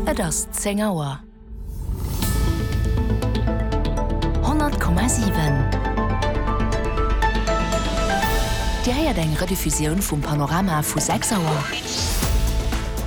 Et ass 10 Auer. 100,7 Dir héiert eng Rediffusioun vum Panorama vu 6 Auer.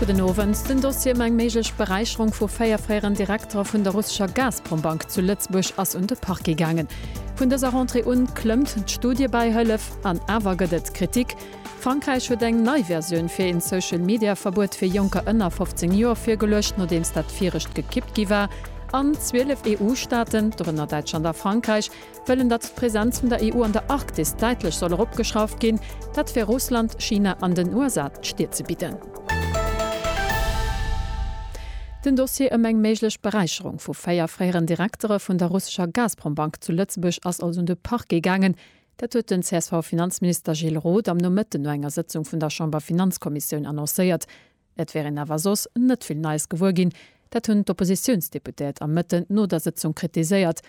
Gudden Owend. Den Dossier ëm eng méiglech Beräicherung vu 4 fréieren Direktere vun der russescher Gazprom-Bank zu Lëtzebuerg ass un de Parquet gaangen. Vun dëser Rentrée un klëmmt d'Studiebäihëllef an awer gëtt et Kritik. Frankräich huet eng nei Versioun fir een Social-Media-Verbuet fir Jonker ënner 15 Joer virgeluecht, nodeems dat virecht gekippt gi war. An 12 EU-Staaten, dorënner Däitschland a Frankräich, wëllen, datt d'Presenz vun der EU an der Arktis däitlech soll eropgeschrauft ginn. Dat fir Russland, China an den USA d'Stier ze bidden. Den Dossier ëm eng méiglech Beräicherung vu véier fréieren Direktere vun der russescher Gazprom-Bank zu Lëtzebuerg ass also un de Parquet gaangen. Dat huet den CSV-Finanzminister Gilles Roth am Nomëtten no enger Sëtzung vun der Chamberfinanzkommissioun annoncéiert. Et wär een awer soss net vill Neies gewuer ginn. Dat hunn d'Oppositiounsdeputéiert am Mëtten no der Sëtzung kritiséiert.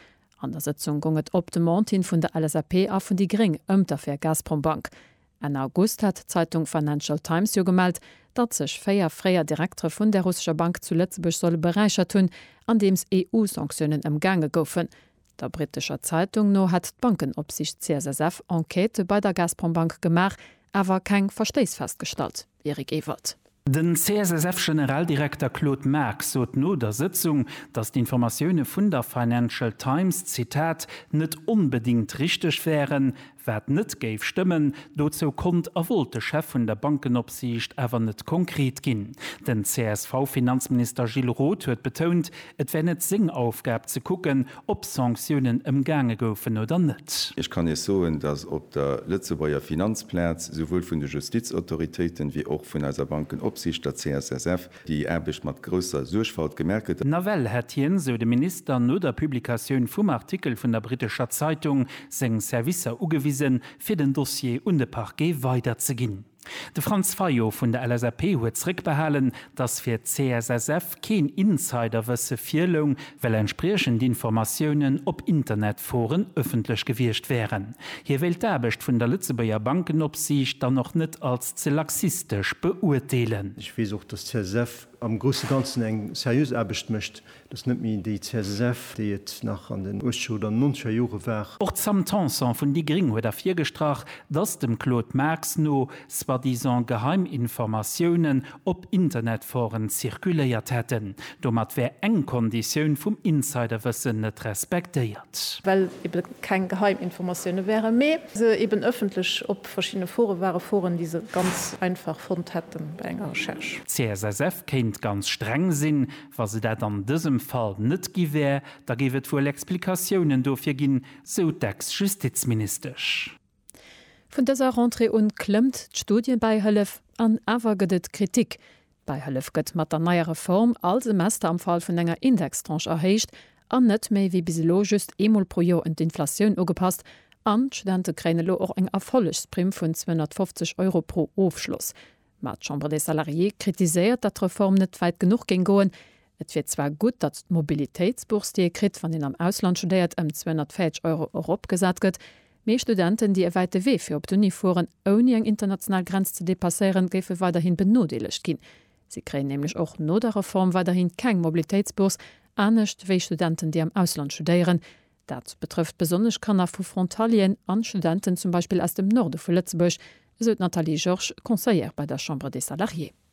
An der Sëtzung goung et op Demande hin vun der LSAP a vun déi gréng ëm d'Affär Gazprombank. Enn August hat d'Zeitung Financial Times jo gemellt, datt sech véier fréier Direktere vun där russescher Bank zu Lëtzebuerg solle beräichert hunn, andeems EU-Sanktiounen ëmgaange goufen. Der britescher Zeitung no hätt d'Bankenopsicht CSSF Enquêtë bei der Gazprombank gemaach, awer keng Verstéiss festgestallt. Eric Ewald. Den CSSF-Generaldirekter Claude Marx sot no der Sëtzung, datt d'Informatioune vun der Financial Times, Zitat, net onbedéngt richteg wären, Wat net géif stëmmen, dozou konnt a wollt de Chef vun der Bankenopsiicht awer net konkret ginn. Den CSV-Finanzminister Gilles Roth huet betount, et wär net seng Aufgab ze kucken, ob Sanktiounen ëmgaange goufen oder net. Ech kann Iech soen, datt op der Lëtzebuerger Finanzplaz souwuel vun de Justizautoritéiten, wéi och vun eiser Bankenopsiicht, der CSSF, Déi Aarbecht mat grousser Suergfalt gemerk gëtt. Nawell hätt hien, sou de Minister, no der Publikatioun vum Artikel vun der brittescher Zeitung seng Servicer ugewisen, fir den Dossier un de Parquet weiderzeginn. De Franz Fayot vun der LSAP huet zréckbehalen, datt fir d'CSSF keen Insiderwësse virloung, well entspriechend Informatiounen op Internetforen ëffentlech gewiescht wären. Hie wéilt d'Aarbecht vun der Lëtzebuerger Bankenopsiicht dann och net als ze laxistesch beuerteelen. Ech weess och, dass d'CSSF am grousse Ganzen eng seriös Aarbecht mécht. Et ass net méi déi CSSF, déi et nach an den uechzeger oder nonzeger Jore war. Och d'Sam Tanson vun déi gréng huet ervirgestrach, dass dem Claude Marx no soi-disant geheim Informatiounen op Internetforen zirkuléiert hätten. Domat wär eng Konditioun vum Insiderwëssen net respektéiert. Well eben keng geheim Informatioune wären, mee se eben ëffentlech op Verschiddene Foren ware Foren, déi se ganz einfach fonnt hätten bei enger Recherche. D'CSSF kéint ganz streng sinn. Wa se dat an dësem Fall net gi wär, da géif et wuel Explikatiounen dofir ginn, sou d'Ex-Justizministesch. Vun dëser Rentrée un klëmmt d'Studiebäihëllef an awer gëtt et Kritik. D'Beihëllef gëtt mat der neier Reform all Semester am Fall vun enger Indextranche erhéicht an net méi wéi bis elo just eemol pro Joer un d'Inflatioun ugepasst an d'Studente kréien elo och eng Erfollegsprimm vun 250 Euro pro Ofschloss. Mä d'Chambre des Salariés kritiséiert, datt d'Reform net wäit genuch géing goen. Et wier zwar gutt, datt d'Mobilitéitsbourse, déi ee kritt, wann een am Ausland studéiert, ëm 240 Euro eropgesat gëtt, Mee Studenten, déi e wäite Wee fir op d'Uni fueren, ouni eng international Grenz ze depasséieren, géife weiderhi benodeelegt ginn. Si kréien nämlech och no der Reform weiderhi keng Mobilitéitsbourse, anescht wéi Studenten, déi am Ausland studéieren. Dat betrëfft besonnesch Kanner vu Frontalieren an Studenten zum Beispill aus dem Norde vu Lëtzebuerg, esou d'Nathalie Georges, Conseillère bei der Chambre des Salariés.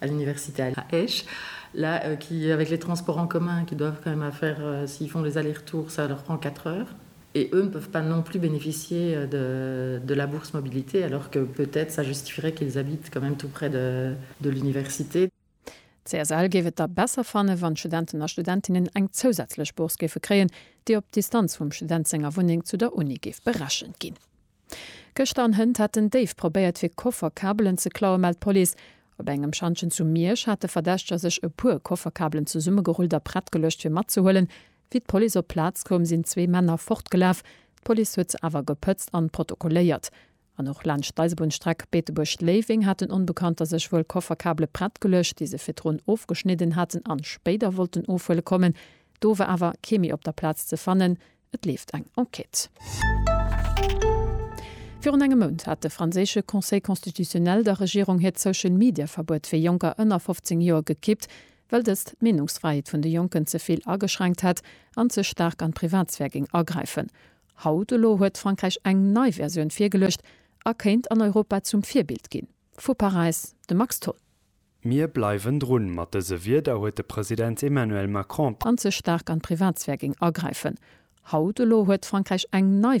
à l'université à Esch, là qui avec les transports en commun qui doivent quand même à faire s'ils font les aller retours ça leur prend 4 heures et eux ne peuvent pas non plus bénéficier de de la bourse mobilité alors que peut-être ça justifierait qu'ils habitent quand même tout près de de l'université. D'CSL géif et da besser fannen, wann d'Studenten a Studentinnen eng zousätzlech Bourse géife kréien, déi op d'Distanz vum Student senger Wunneng zu der Uni géif berechent ginn. Gëschter an Hënt hätten déif probéiert fir Kofferkabelen ze klauen, mellt d'Police. Op engem Schantjen zu Miersch hat de Verdächteger sech e puer Kofferkabelen zesummegerullt a prett geluecht fir matzehuelen. Wéi d'Police op d'Plaz koum, sinn zwee Männer fortgelaf. D'Police huet se awer gepëtzt an protokolléiert. An och laanscht d'Eisebunnstreck Beetebuerg-Léiweng haten Onbekannter sech wuel Kofferkabele prett geluecht, déi se virdrun ofgeschnidden haten an spéider wollten ofhuele kommen. Do war awer kee méi op der Plaz ze fannen. Et leeft eng Enquête. Virun engem Mount hat de franséische Conseil constitutionnel der Regierung hiert Social-Media-Verbuet fir Jonker ënner 15 Joer gekippt, well dëst d'Meenungsfräiheet vun de Jonken ze vill ageschränkt hätt an ze staark an d'Privatsphär géing agräifen. Haut elo huet Frankräich eng nei Versioun virgeluecht a kéint an Europa zum Virbild ginn. Vu Paräis de Max Tholl. Mir bleiwen drun. Mat dëse Wierder huet de President Emmanuel Macron. An ze staark an d'Privatsphär géing agräifen. Haut elo huet Frankräich eng nei.